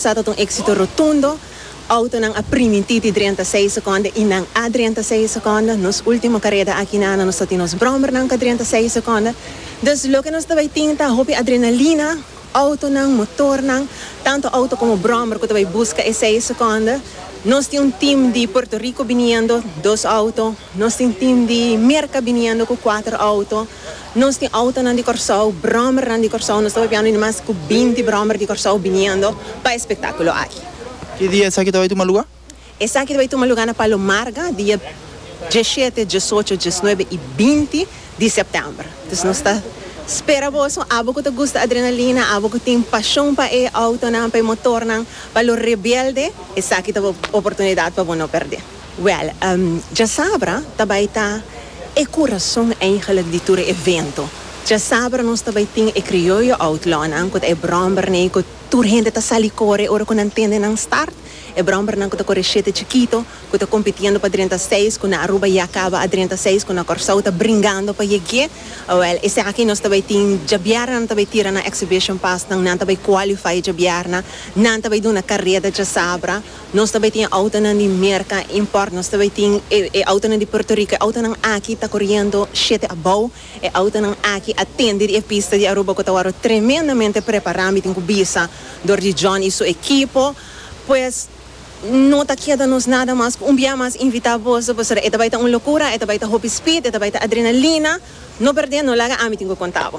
Sa ta un éksito rotundo. Outonan a primintí di drenta seis sekonda i nan a drenta seis sekonda. Nos último kareda aki na Ana nos ta tin nos bròmbernan ku a drenta seis sekonda. Dus loke nos ta bai tin ta hopi adrenalina, outonan, motornan, tantu outo komo bròmber ku ta bai buska e seis sekonda. Nos tin un tim di Puerto Rico biniendo, dos outo. Nos tin tim di Merka biniendo ku kuater outo. Nos tin autonan di Kòrsou, bròmernan di Kòrsou. Nos ta papiando di mas ku binti bròmer di Kòrsou biniendo pa e spektákulo aki. Ki dia esaki ta bai tuma lugá? Esaki ta bai tuma lugá na Palo Marga dia diesshete, diesocho, diesnuebe i binti di sèptèmber. Dus nos ta spera boso, abo ku ta gusta adrenalina, abo ku tin pashon pa e autonan, pa e motornan, pa lo rebelde, esaki ta bo oportunidat pa bo no pèrdè. Wèl, djasabra ta bai ta e kurason eindelijk di tur e evento. Djasabra nos ta bai tin e Krioyo Outlawnan ku ta e bròmbernan ku tur hende ta sali kore ora ku nan tende nan start. E bròmbernan ku ta kore shete chikito ku ta kompitiendo pa drenta seis ku na Aruba ya kaba a drenta seis ku na Kòrsou ta bringando pa yeg'é. Wèl, esaki nos ta bai tin djabièrna nan ta bai tira nan exhibition paasnan, nan ta bai kwalifai djabièrna, nan ta bai duna kareda djasabra. Nos ta bay tin e autonan di Merca import, nos ta bay tin e autonan di Puerto Rico, e autonan aki ta coriendo shete abao, e autonan aki a tende di e pista di Aruba cu ta worde tremendamente prepara, mi tin cu bisa, door di John y su equipo, pues no ta keda nos nada mas cu un bia mas invita boso, pasobra e ta bay ta un locura, e ta bay ta hopi speed, e ta bay ta adrenalina, no perde, no laga, ami tin cu conta bo.